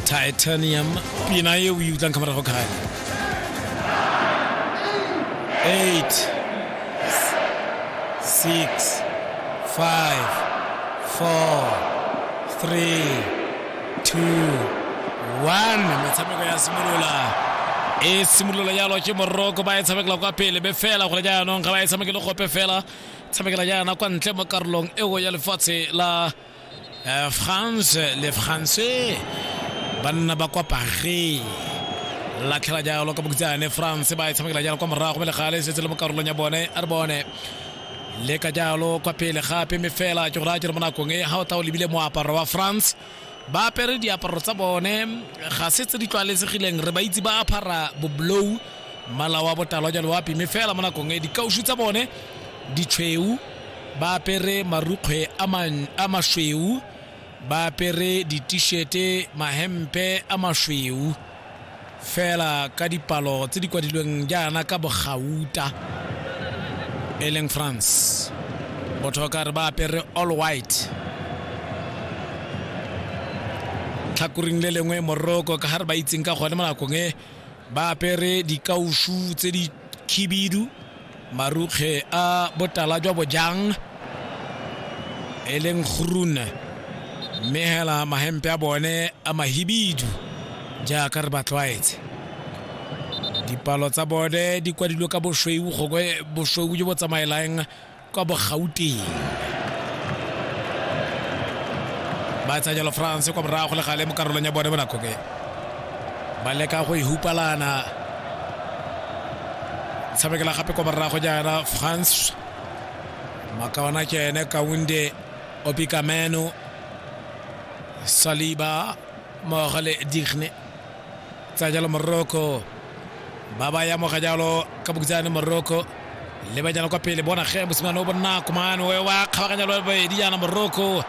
titanium pina e o e utlwang ka morago kgale eight six five four three two one metshameko ya simolola e simolola jalo ke moroko ba e tshamekela kwa pele be fela gore jaanong ga ba e tshamekele gope fela tshamekela jaana kwa ntle mo karolong eo ya lefatshe la Air France le France ba nna ba kwa Paris latlhela jalo ka bokutsane France ba e tshamekela jalo kwa morago mme legale e setse le mo karolong ya bone a re bone le ka jalo kwa pele gape mme fela ke go raya jalo mo nakong e ga o tla o lebile moaparo wa France ba apere diaparo tsa bone ga se tse di tlwaelesegileng re ba itse ba aphara boblou mmala wa botalwa jalo wa pime fela mo nakong e dikausu tsa bone ditshweu ba apere marukgwe a masweu ba apere ditishete mahempe a masweu fela ka dipalo tse di kwadilweng jaana ka bogauta e leng france botho ka re ba apere all white tlhakoring le lengwe moroko ka ga re ba itseng ka gone mo nakong e ba apere dikausu tse di khibidu marukge a botala jwa bojang e leng groen mme hela mahempe a bone a mahibidu jaaka re ba tlwaetse dipalo tsa bone di kwadilwe ka bosweu gongwe bosweu jo bo tsamaelang kwa bogauteng ba tsaya jalo france kwa morago le gale mo karolong ya bone bonako ke ba leka go e hupalana tshamekela gape kwa morago jaana france makaona ke ene kaunde opikameno saliba mmogo le digne tsa jalo morocco ba ba ya moga jalo ka bokutsane morocco le ba jana kwa pele bona ge mosimane o bonako mane wa kgabaganya lo bobedi jaana morocco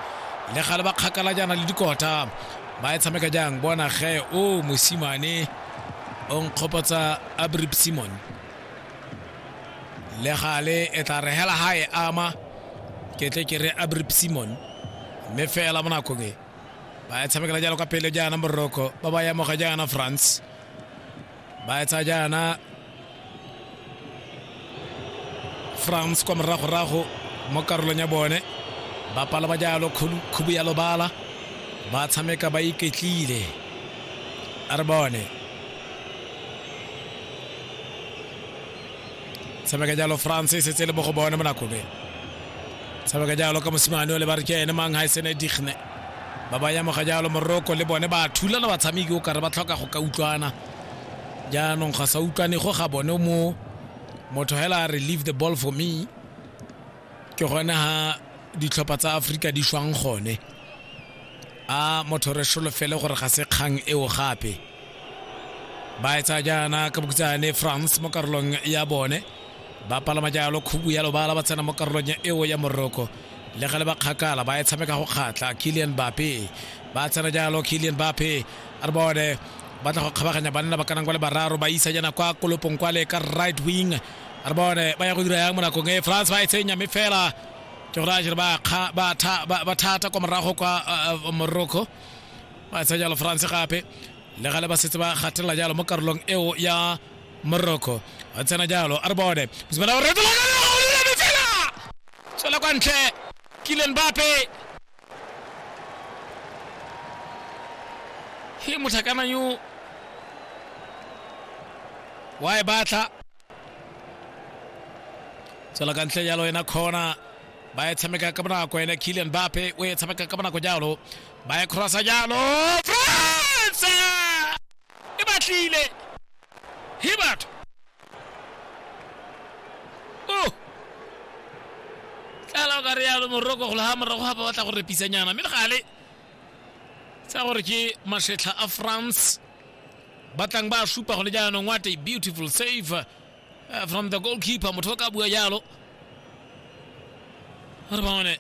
le gale ba kgakala jaana le dikota ba e tshameka jang bona ge o mosimane o nkgopotsa abrib simon le gale e tla re hela ga e ama ke tle ke re abrib simon mme fela mo nakong e ba e tshamekela jalo ka pele jaana moroko ba ba yamoga jaana france ba etsa jaana france kwa moragorago mo karolong ya bone ba pala ba jalo khubu ya lobala ba tshameka ba iketlile a re bone tshameka jalo france e setse le mo go bone mo nakobeng tshameka jalo ka mosimane o le ba re ke ene mang ha e sene digne ba ba yamoga jalo moroko le bone ba thulana batshameki o kare ba tlhoka go ka utlwana jaanong ga sa utlwane go ga bone mo motho hela a re leave the ball for me ke gone ha ditlhopha tsa aforika di shwang gone a motho re solofele gore ga se kgang eo gape ba etsa jaana ka bokutsane france mo karolong ya bone ba palama jalo khubu ya lobala ba tsena mo karolong ya eo ya moroko le ga le ba kgakala ba e tshameka go kgatla kilian bape ba tsena jalo kilian bape a re bone ba tla go kgabaganya banna ba kanang kwa le bararo ba isa jana kwa kolopong kwa le ka right wing a re bone ba ya go dira yang mo nakong e france ba e tsenya mme fela ke gore a jere ba kga- ba tha- ba- ba thata kwa morago kwa uh, uh, morocco ba tsaya jalo france gape le gale ba setse ba gatelela jalo mo karolong eo ya Morocco a tsena jalo a re bone mosimane o retola ka lego o lebelele fela tswela kwa ntle Kylian Mbappe he motlhakana yo wa e batla tswela ka ntle jalo ena khona ba e tshameka ka bonako ene Kylian Mbappe o e tshameka ka bonako jalo ba e crossa jalo France e batlile he batho o tlala o ka re yalo moroko golo ga morago ga ba batla go repisanyana mme le gale tsa gore ke masetlha a france batlang ba supa gone jaanong what a beautiful save uh, from the goalkeeper motho o ka bua jalo re bone